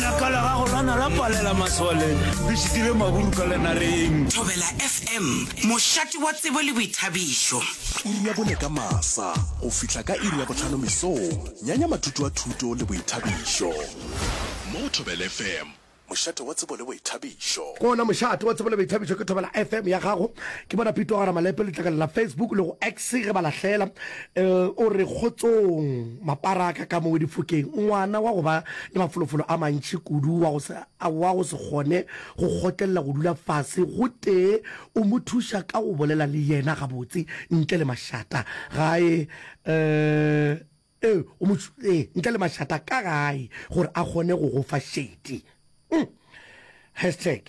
Ka la gago lana la palela maswaleng, le šitile maburu ka lenareng. Thobela FM, mošate wa tsebo le boithabišo. Iri ya bone ka masa go fihla ka iri ya bohlano mesong, nyanya mathuto a thuto le boithabišo mo go Thobela FM, mošate wa tsebo le boithabišo. Ke ona mošate wa tsebo le boithabišo, ke Thobela FM ya gago. Ke bona Pito Gara Malepe, letlakala la Facebook le go X ge ba lahlela L o re, Kgotsong, mapara a ka ka mo o difokeng, ngwana wa go ba le mafolofolo a mantši kudu wa go se, wa go se kgone go kgotlelela go dula fase gotee o mo thuša ka go bolela le yena gabotse ntle le mašata gae, ee, o mo, ee, ntle le mašata ka gae gore a kgone go go fa šedi. Hashtag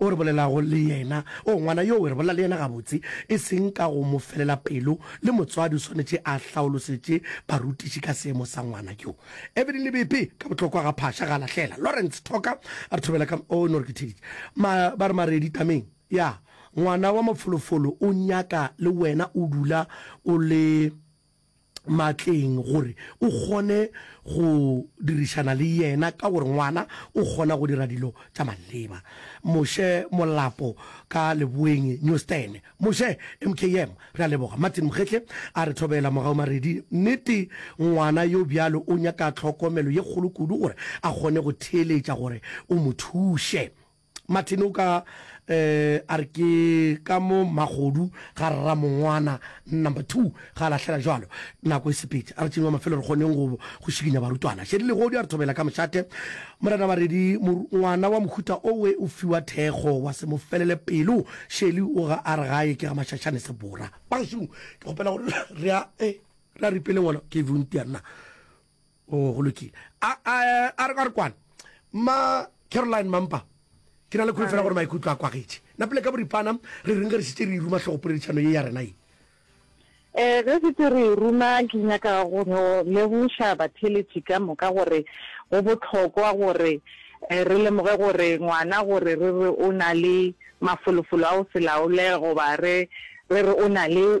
O re bolelago le yena. Oo, ngwana yoo, re bolela le yena gabotse, e seng ka go mo felela pelo, le motswadi o swanetše a hlaolosetše barutiši ka seemo sa ngwana yo. Evelyn Lebepe, ka bohlokwa ga phaša, ga a lahlela. Lawrence Thoka, a re thobela ka, oo, no re ke theditše. Ma, ba re Maredi tameng. Ya, ngwana wa mafolofolo o nyaka le wena o dula o le matleng gore o kgone go dirišana le yena ka gore ngwana o kgona go dira dilo tša maleba. Moshe Molapo ka Leboeng Newstan. Moshe, MKM, re a leboga. Martin Mokgehle a re thobela mogau Maredi. Nnete ngwana yo bjalo o nyaka tlhokomelo ye kgolo kudu gore a kgone go theeletša gore o mo thuše. Martin o ka eh, a re ke ka mo magodu ga rra mongwana number two ga a lahlela jalo nako e sepetše a re tšenyo wa mafelo re kgoneng go go šikinya barutwana šedi legodi a re thobela ka mošate morena baredi mor- ngwana wa mohuta owe o fiwa thekgo wa se mo felele pelo šeli o ga a re gae ke ga mašašane sebora bašung ke kgopela gore re a eh, re a ripele ngwana ke vuntia nna Oh, go lokile. A, a, a re re kwane. Ma Caroline Mampa, ke na le kgolo fela gore maikutlo a kwagetše. Na pele ka boripana, re reng ge re šitše re ruma hlogopoledišano ye ya rena ye? Eh, ge šitše re ruma, ke nyaka go no legoša batheletši ka moka gore go bohlokwa gore eh, re lemoge gore ngwana gore re re o na le mafolofolo a go se laole goba re re re o na le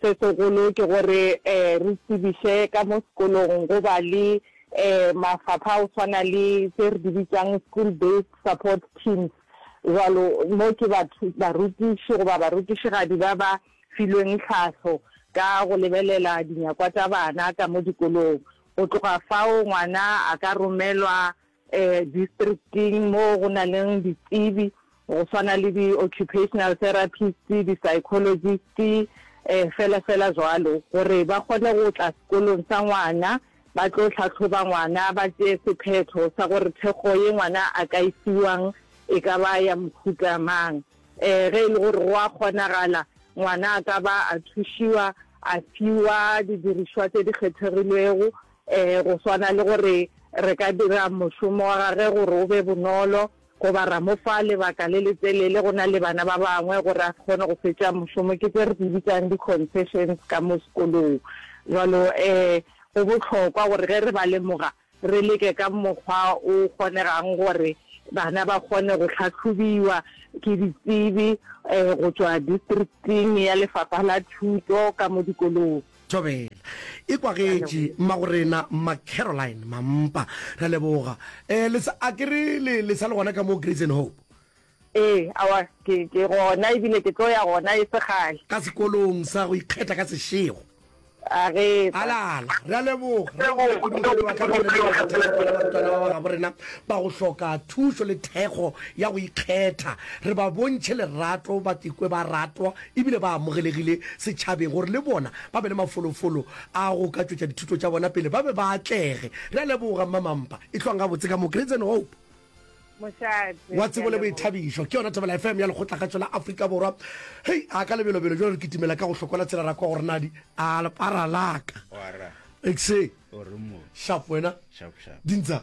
Se segolo ke gore re tsebiše ka mo sekolong go ba le mafapha a go swana le tše re di bitsang School Based Support Teams, jwalo mo ke barutiši goba barutišigadi ba ba filweng tlhahlo ka go lebelela dinyakwa tša bana ka mo dikolong. Go tloga fao ngwana a ka romelwa Districting mo go na leng ditsebi go swana le di-occupational therapist, di-psychologist fela fela jwalo gore ba kgone go tla sekolong sa ngwana ba tlo tlhatlhoba ngwana ba tšee sephetho sa gore thekgo ye ngwana a ka e fiwang e ka ba ya mohuta mang. Um ge e le gore go a kgonagala ngwana a ka ba a thušiwa a fiwa didirišwa tse di kgethegilwego Ee, go swana le gore re ka dira mošomo wa gagwe gore o be bonolo goba ra mo fa lebaka le letelele go na le bana ba bangwe gore a se kgone go fetša mošomo, ke tše re di bitsang di-concessions ka mo sekolong. Jwalo ee, go bohlokwa gore ge re ba lemoga re leke ka mokgwa o kgonegang gore bana ba kgone go hlahlobiwa ke ditsebi go tšwa Districting ya Lefapha la Thuto ka mo dikolong. Thobela. Ekwa ge etši, Mmagorena, Mma Caroline, Mampa. Re a leboga. Eh, le sa, a ke re le, le sa le gona ka moo Grace and Hope? Ee, aowa, ke, ke gona, e bile ke tlo ya gona e se kgale. Ka sekolong sa go ikgetha ka sešego. A ge sa. Ala, ala, re a leboga, re a leboga kudu morwedi wa ka ge o le nna kgetha ya bona barutwana ba ba gabo rena ba go hloka thušo le thekgo ya go ikgetha. Re ba bontšhe lerato, ba ikwe ba ratwa e bile ba amogelegile setšhabeng gore le bona ba be le mafolofolo a go ka tšwetša dithuto tša bona pele ba be ba atlege. Re a leboga Mma Mampa, e hlwang gabotse ka mo Grades and Hope. Mošate, Wa ke a tsebo le leboga. boithabišo ke yona Thobela FM ya Lekgotlagatšo la Afrika Borwa. Hei, a ka lebelobelo jalo re kitimela ka go hlokola tsela ra kwa gore na di a lepara laka. Wara, Exe, o re mo, shapo wena, sharp sharp. dintsa.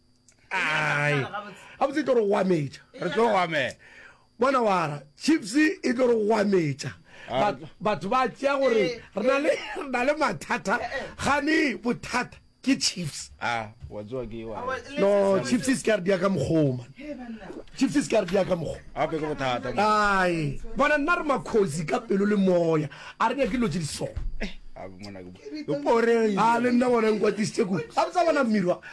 ai a botse e tlo re goametša re tlo goamela bona wara chips e tlo re goametša Ba- batho ba tšea gore re na le- re na le mathata gane bothata ke chips a wa tsoa ke wa no chips e se ka re dia ka mokgoma chips e se ka re dia ka mokgo gape ke bothata ai bona nna re makgosi ka pelo le moya a re nyake dilo tse di so Gape mona ke bo- ke poreng a le nna bona nkwatisitse ku a botsa bona mmirwa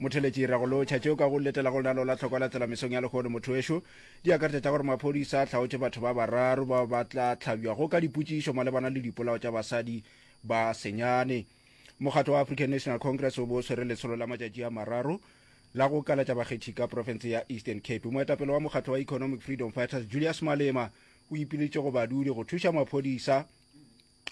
Motheletši ra go lotšha tšeo ka go letela go lenaneo la tlhoko la tsela mesong ya lehono motho wešo di akaretša tša gore maphodisa a hlaotše batho ba bararo bao ba tla hlabjwago ka dipotšišo malebana le dipolao tša basadi ba senyane. Mokgatlo wa African National Congress o bo o swere letsholo la matšatši a mararo la go kalatša bakgethi ka profense ya Eastern Cape. Moetapele wa mokgatlo wa Economic Freedom Fighters Julius Malema o ipiletše go badudi go thuša maphodisa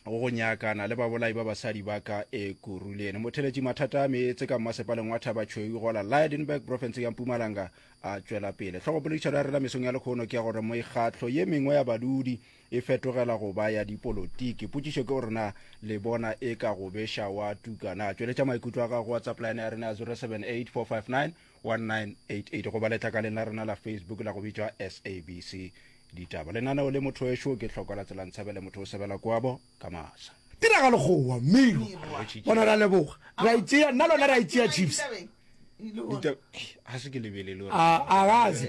go go nyakana le babolai ba basadi ba ka ekuruleni motheletši mathata a meetse ka mmasepaleng wa thaba tšhweu gola lydenburg profense ya mpumalanga a tšwela pele tlhogopoledišano ya rela mesong ya lekgono ke ya gore mekgatlo ye mengwe ya badudi e fetogela go ba ya dipolotiki potšišo ke gore na le bona e ka go beša wa tukana a tšweletša maikutlo a gago whatsapp line ya rena ya 078 459 1988 goba letlakaleng la rena la facebook la go bitšwa sabc ditaba lenaneo le motho ešo ke tlhoko la tsela ntshabele motho o sebela kwabo ka masa tiragalo gowa miro bona ra leboga ra itsea nna lona ra itsea chiefs ga se ke lebelele a gaze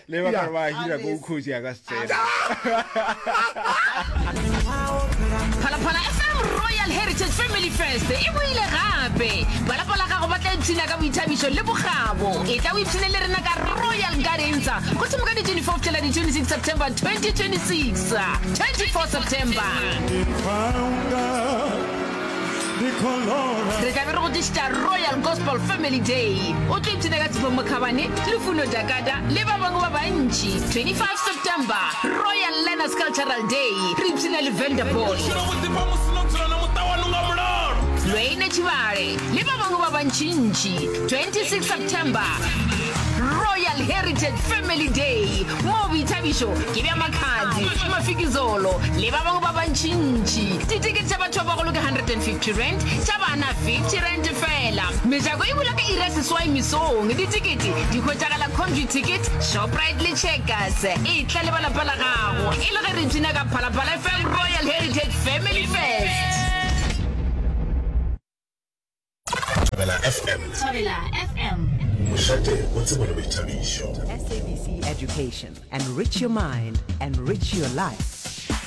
le ba ka ba hira ko ukhozi a ka se tsena phalaphala fm royal heritage family fest e boile gape balapa la gago ba tla ipshina ka boithabišo le bogabo e tla o ipshine le rena ka royal gardensa go thimo ka di-24 tšela di-26 september 2026 24 september re tlabe re go tlišitša royal gospel family day o tlo ipshina ka tshepho mokhabane lefuno jakata le ba bangwe ba bantši 25 september royal learners cultural day re ipshina le vanderboy lweine tšhibale le ba bangwe ba bantšintši 26 september royal heritage family day moo boithabišo ke bja makhadzi mafikizolo le ba bangwe ba bantšintši Ditikete tša batho ba bagolo ke R150, tša bana R50 fela. Mejako e bula ka iri ya seswai mesong. Ditikete di hwetšagala Conview Ticket, Shoprite le Checkers. Etla le ba lapa la gago e le ge re ipshina ka Phalaphala FM Royal Heritage Family Fest.